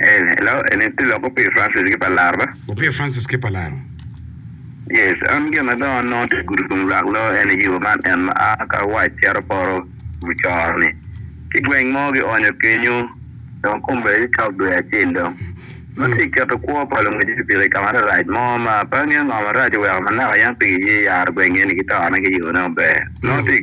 Eni, elo, eni ti lok opir Francis ki pa laro ba? Opir Francis ki pa laro. Yes, an gin ma dong anongo ti gudo tung lwak lo eni yo man en ma a ka wac cito poto mucoro-ni ki gweng mo ki onyo kenyo dong kombe ti cok dwe acel dong. Nongo ti keto kwo pa lungwec pikipiki i ka ma rarac mo ma pe angeyo ngo marac oweko manaka yam pigi ye yaro gweng eni ki tone ki yone maber. Nongo ti.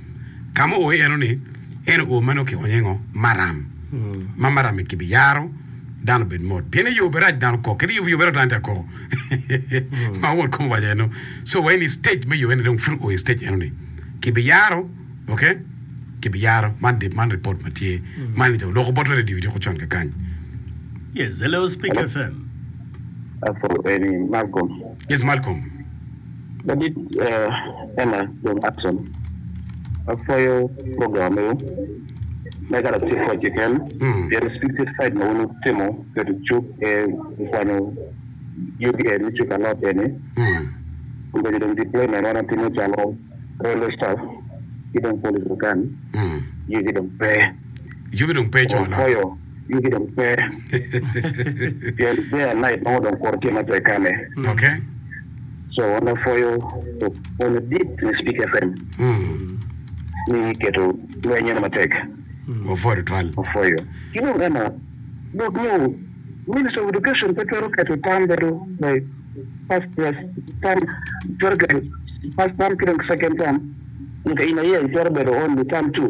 Ka ma oo eno ni en oo meno ki onyo engo maram ma maram mi kibi yaro dano obed mot pien eyo berac dano kok kadi yo berac dano tye akoko ma won kom owaco eno so wa ini stage me yo eno dong pud oo stage eno ni kibi yaro ok kibi yaro man dip man report ma tye man ni loko bot radio idi ko con ka kany Yes, hello Speak FM. Apo eni Malcolm. yes Malcolm Ladit Ella John Upson ma pwoyo program meno mega latit pwod keken pien spiritual side ma wun wutimo keto cuk e kwanyo yugi e me cuk a lot eni kun bedo dong deployment wan watimo calo railway staff ki dong police otan yugi dong pe Yugi dong pe coo lok. yugi dong pe pien bear night nongo dong kuro tye matek kane Okay. so en aye pwoyo pwony madit me speak fm ni keto lweny eno matek Wapwoyo tutwal. wapwoyo ki dong eno dok nyo minister of education pe twero keto tam bedo kwai first place tam twero keto first tam ki dong second tam nyo ka in aye itwero bedo only tam two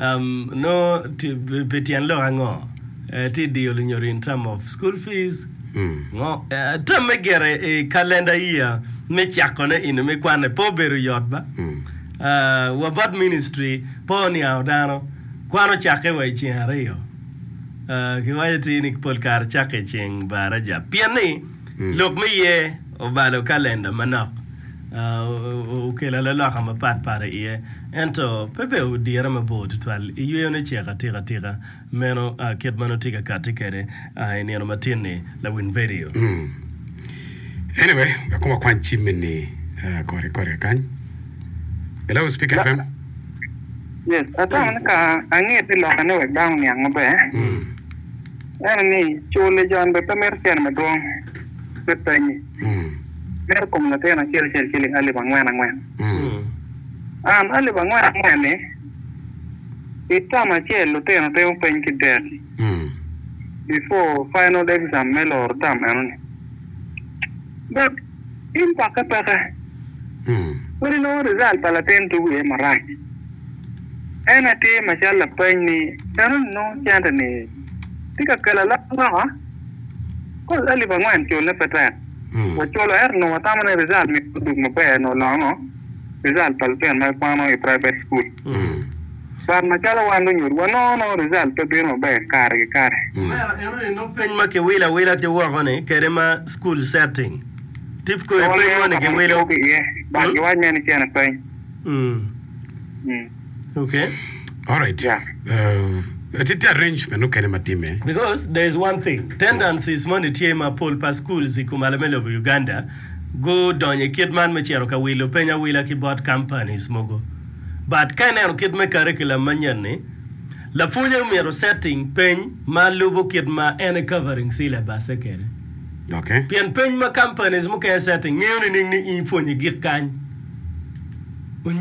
Nongo pi tyen lok ango ti diyo lunyodo in term of school fees? Ngo term me gere i calendar year me cako ne inu me kwane pe obedo yot ba. Wa bot ministry pe oniango dano. Kwan ocakke wa i ceng ariyo. Ki waco ti ni pol kare cakke i ceng baraja. Pien ni. Lok me ye obalo kalenda manok okelo aloloka mapat pat i iye, ento pe bene odire mabor tutwal i yweyone cek atika tika meno kit ma nongo tye ka kati kwede i nino matin-ni, lawin vidio. Anyway, wek kong wakwany cim eni kore kore kany. Hello, Speak FM. Yes, atwero ni ka ange te lokane wek dano oniang maber. Ineno ni co lejon bene pe mito cene madwong me pannyi, mito kom latin acel acel ciling alip angwen angwen. An alip angwen angwen-ni, i tam acel lutino timo peny ki dek before final exam me loro tam enoni. Tim kwak apaka kadi nongo rizal pa latin tugo iye marac. En aye tye macalo lapeny ni enoni nongo cente-ni tye ka kelo alok loka? Kodi alip angwen culne pe tek waculo ento onongo watamo ni rizal myero odog maber nyo oloo ango? result pa lutino ma gikwano i private school. But macalo wan lunyodi wanongo nongo result pe bino maber kare ki kare. Omera eno ni nongo peny ma kiwilo awila ki woko ni kede ma school setting tip kodi peny moni giwilo. But giwac me ni cene peny. Okay. Alright. Yeah. Uh, ati ti arrangement okene ma time. Because there is one thing, tendencies moni tye ma pol pa schools i kom ala me lobo Uganda gudonyo i kit man me cito ka wilo peny awila ki bot companies mogo. But ka ineno kit me curriculum manyen-ni, lapwonye omyero setting peny ma lubo kit ma en e covering syllabus-se kede. Okay. Pien peny ma companies mukene setting ngiyo nining ni in ipwonye gik kany.